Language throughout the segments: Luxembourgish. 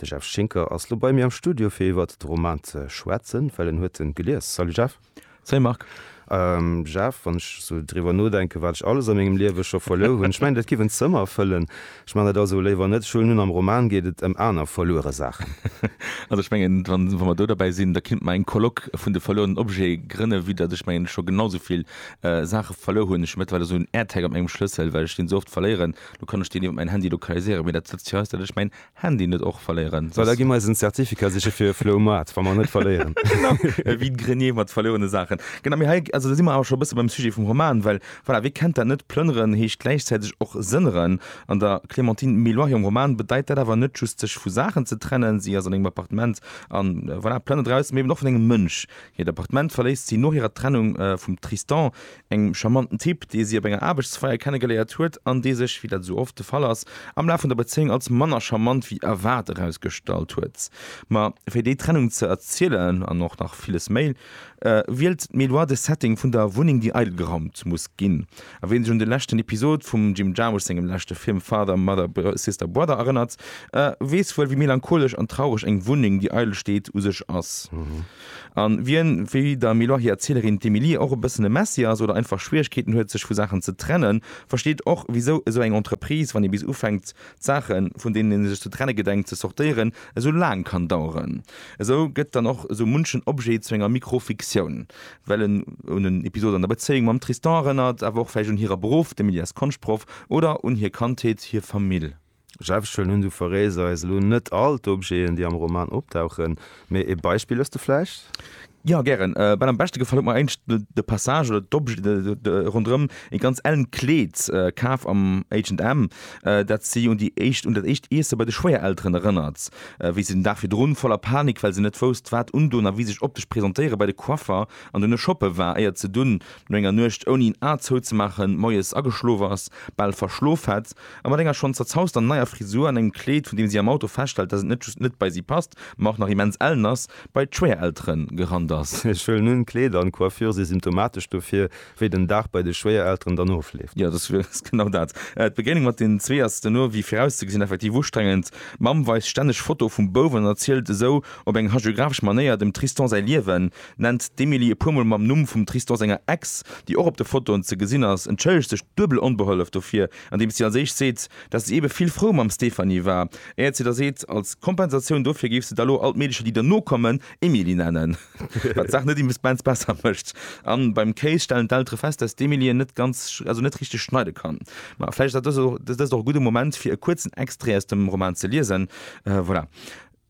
De Jeff Schinker ass lo bei mir am Studio fir iwwert de Roman ze schwätzen, well en huet en gelies. Salut Jeff. Salut Marc. Jeff, wann ech sou driwwer nodenken, wat ech alles a mengem Liewe scho verluer hunn, ech mengen dat giff en Zëmmer fëllen. Ech man dat also léiwer net schön hunn. Am Roman geet et ëm aner verluere Saachen. Also ech mengen, wa mer do derbäi sinn, da kinnt mer eng Colloque vun de verluerenen Objete grënne, vue datt ech mengen ech scho genau sou vill Saache verluer hunn. Ech hunn mëttlerweil esou en Airtag op mengem Schlëssel, well ech deen sou oft verléieren. Lo kann ech deen iwwert mäin Handy lokaliséieren, mee dat Lëtzecht hei ass dat ech mäin Handy net och verléieren. Well da gi mer eisen Zertificat siche fir e Floumaart, wa mer en net verléieren. Genau, e vide-grenier mat verlouene Saachen. Genau, mee hei, also do si mer awer scho e bësse beim Sujet vum Roman, well voilà, wee kennt dat net, Plënneren heescht gläichzäiteg och sënneren. An der Clémentine Méloir hirem Roman bedeit dat awer net just sech vu Saachen ze trennen, si ass an engem Appartement a voilà, plënnert draussen, mee eben och vun engem Mënsch. Hiert Appartement verléisst si no hirer Trennung vum Tristan, Engem charmanten Typ, dee si op enger Aarbechtsfeier kennegeléiert huet an dee sech, wéi dat esou oft de Fall ass, am Laf vun der Bezéiung als manner charmant wéi erwaart erausgestallt huet. Ma fir déi Trennung ze erzielen an och nach villes méi, wielt d'Méloire de Setting vun der Wunneng, déi eidel geraumt muss ginn. A wien sech un de leschten Episod vum Jim Jarmusch sengem leschte Film Father, Mother, Sister, Brother erënnert, weess wuel, wéi melancholesch an traureg eng Wunneng, déi eidel steet, u sech ass. An wien, wéi der Meloireerzählerin d'Emilie, och e bëssen e Messi ass oder einfach Schwieregkeeten huet sech vu Saachen ze trennen, versteet och wisou esou eng Entreprise, wann ee bis ufänkt d'Saachen, vun deenen ee sech ze trenne gedenkt, ze sortéieren, esou laang kann daueren. Esou gëtt dann och esou munchen Objet zu enger Mikrofiktioun, well en un en Episod an der Bezéiung mam Tristan erënnert, awer och vläicht un hirer Beruff, d'Emilie ass Konschtproff, oder un hir Kandheet, hir Famill. Selbstschwëllen hunn du verréisst eis elo net all d'Objeten, déi am Roman opdauchen, mee e Beispill hues de vläicht? Jo, gären. Ben, am beschte gefall huet mer éischt de Passage oder d'Objete ronderëm e ganz ellen Kleed, kaf am H&M, dat si un déi éischt, un dat éischt Iesse bei de Schwéierelteren erënnert, wéi si den Dag virdrun, voller Panik, well se net wousst, wat undoen a wéi sech optesch presentéieren, bei de Coiffer an duerno shoppe war, éier se dunn, no enger Nuecht ouni en A zouzemaachen, moies ageschlof ass, bal verschlof hätt. A mat enger schonn zerzauster neier Frisur an engem Kleed, vun deem si am Auto feststellt, dass et net just net bei si passt, ma och nach immens ellen ass, bei d'Schwéiereltere gerannt ass. Hir Schuel, Nunn, Kleed an Coiffure si symptomatesch dofir, wéi den Dag bei de Schwéierelteren dann ofleeft. Jo, dass ass genau dat. D'Begéinung mat den zwee ass duerno, wéi virauszegesinn, effektiv ustrengend. D'Mamm weist stänneg Fotoe vum Bouf an erzielt esou op eng hagiographesch Manéier dem Tristan säi Liewen, nennt d'Emily e puer mol mam Numm vum Tristan senger Ex, déi och op de Fotoen ze gesinn ass, entschëllegt sech duebel onbehollef dofir, andeems si als éischt seet, dass si ebe vill frou mam Stéphanie war, éiert si da seet, als Kompensatioun dofir géif se da lo all d'Meedecher, déi derno kommen, Emily nennen, wat d'Saach net immesbens besser mécht. A beim Kéis stellen d'Eltere fest, dass d'Emily en net ganz, also net richteg schneide kann. Ma vläicht ass dëst och e gudde Moment, fir e kuerzen Extrait aus dem Roman ze liesen. Voilà.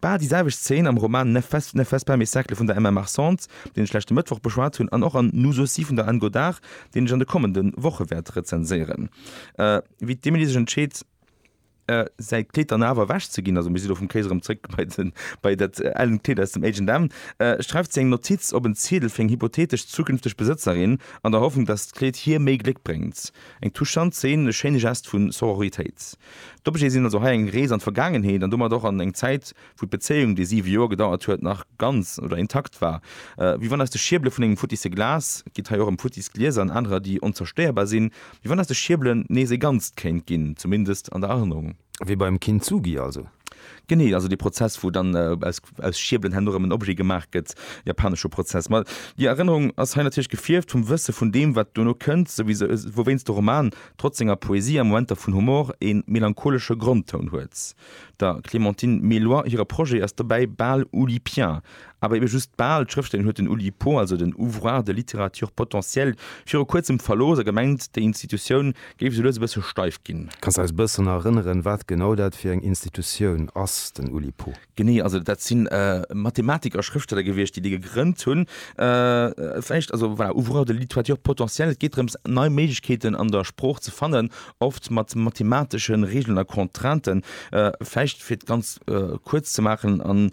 Bal déi selwecht Szene am Roman Ne fais, ne fais pas mes cercles vun der Emma Marcent, deen ech leschte Mëttwoch beschwat hunn, an och an Nous aussi vun der Anne Godart, deen ech an de kommende Woche wäert rezenséieren. Wéi d'Emily sech entscheet, säi Kleed dann awer ewech ze ginn, also mir si lo vum Kéis erëm zréck bei dat ellent Kleed aus dem H&M, schreift si eng Notiz op en Ziedel fir eng hypothetesch zukünfteg Besëtzerin, an der Hoffnung, dass d'Kleed hir méi Gléck bréngt. Eng touchant Szene, e schéine Gest vu Sororitéit. D'Objete sinn also hei eng Rees an d'Vergaangenheet an domat och an eng Zäit, wou d'Bezéiung, déi siwe Joer gedauert huet, nach ganz oder intakt war. Wéi wann aus de Schierbele vun engem futtisse Glas, et geet hei och ëm futtis Glieser an anerer, déi onzerstéierbar sinn, wéi wann aus de Schierbelen nees ee Ganzt kéint ginn, zumindest an der Erënnerung. Wéi beim Kintsugi also. Genee, also dee Prozess, wou dann aus Schierbelen herno erëm en Objet gemaach gëtt, japanesche Prozess. Ma déi Erënnerung ass hei natierlech gefierft vum Wësse vun deem, wat duerno kënnt, souwéinst de Roman trotz senger Poesie a Momenter vun Humor e melancholesche Grondtoun huet. Der Clémentine Méloy hire Projet ass dobäi bal oulipien. Awer ebe just bal, d'Schrëfstellerin huet den Oulipo, also den Ouvroir de littérature potentielle, viru kuerzem verlooss a gemengt, déi Institutioun géif esou lues e bësse steif ginn. Kanns de eis e bëssen erënneren, wat genau dat fir eng Institutioun ass, den Oulipo? Genee, also dat si Mathematiker a Schrëftsteller gewiescht, déi dee gegrënnt hunn. Vläicht, also voilà, ouvreurs de littoiture potentielle, et geet drëms, nei Méiglechkeeten an der Sprooch ze fannen, oft mat mathematesche Regeln a Contrainten. Vläicht, fir et ganz kuerz ze maachen,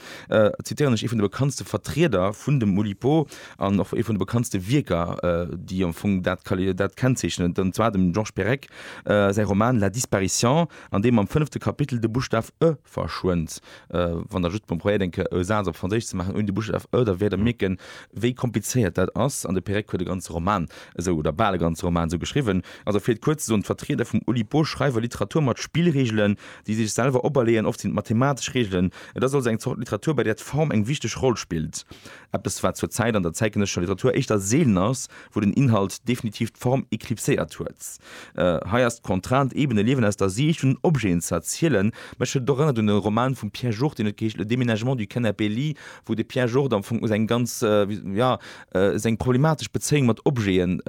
zitieren ech ee vun de bekanntste Vertrieder vun dem Oulipo an och ee vun de bekanntste Wierker, déi am Fong dat kennzeechnen, an zwar dem Georges Perec säi Roman La disparition, an deem am fënnefte Kapitel de Buschtaf e verschwënnt. Wann Der just mol probéiert eng Kéier e Saz op Franséisch ze maachen ouni de Buschstaf ë, da wäert Der mierken, wéi komplizéiert dat ass. An de Perec huet e ganze Roman esou, oder bal e ganze Roman esou geschriwwen. Also fir et kuerz ze soen, D'Vertrieder vum Oulipo schreiwe Literatur mat Spillreegelen, déi si sech selwer operleeën. Oft sinn et mathematesch Reegelen. Et ass also eng Zort Literatur, bei där d'Form eng wichteg Roll spillt, eppes wat zur Zäit an der zäitgenëssescher Literatur éischter seelen ass, wou den Inhalt definitiv d'Form eklipséiert huet. Hei ass d'Contrainte eben e Liewen aus der Siicht vun den Objeten ze erzielen. Mech huet et och erënnert un e Roman vum Pierre Jourde, deen huet geheescht Le déménagement du canapé lit, wou de Pierre Jourde am Fong seng ganz, jo, seng problematesch Bezéiung mat Objeten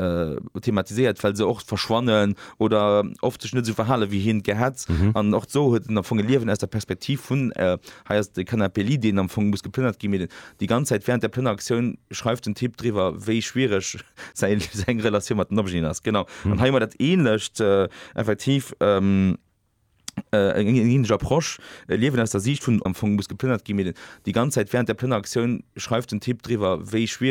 thematiséiert, well se och verschwannen oder oft sech net esou verhale wéi hien et gär hätt. An och do huet en am Fong e Liewen aus der Perspektiv vun Hei ass de Canapé-Lit, deen am Fong muss geplënnert ginn, mee déi ganz Zäit wärend der Plënneraktioun schreift den Typ driwwer, wéi schwiereg säi seng Relatioun mat den Objeten ass. Genau. An hei hu mer dat Ähnlecht effektiv, eng ähnlech Approche, e Liewen aus der Siicht vun, am Fong muss geplënnert ginn, mee déi ganz Zäit wärend der Plënneraktioun schreift den Typ driwwer, wéi schwiereg.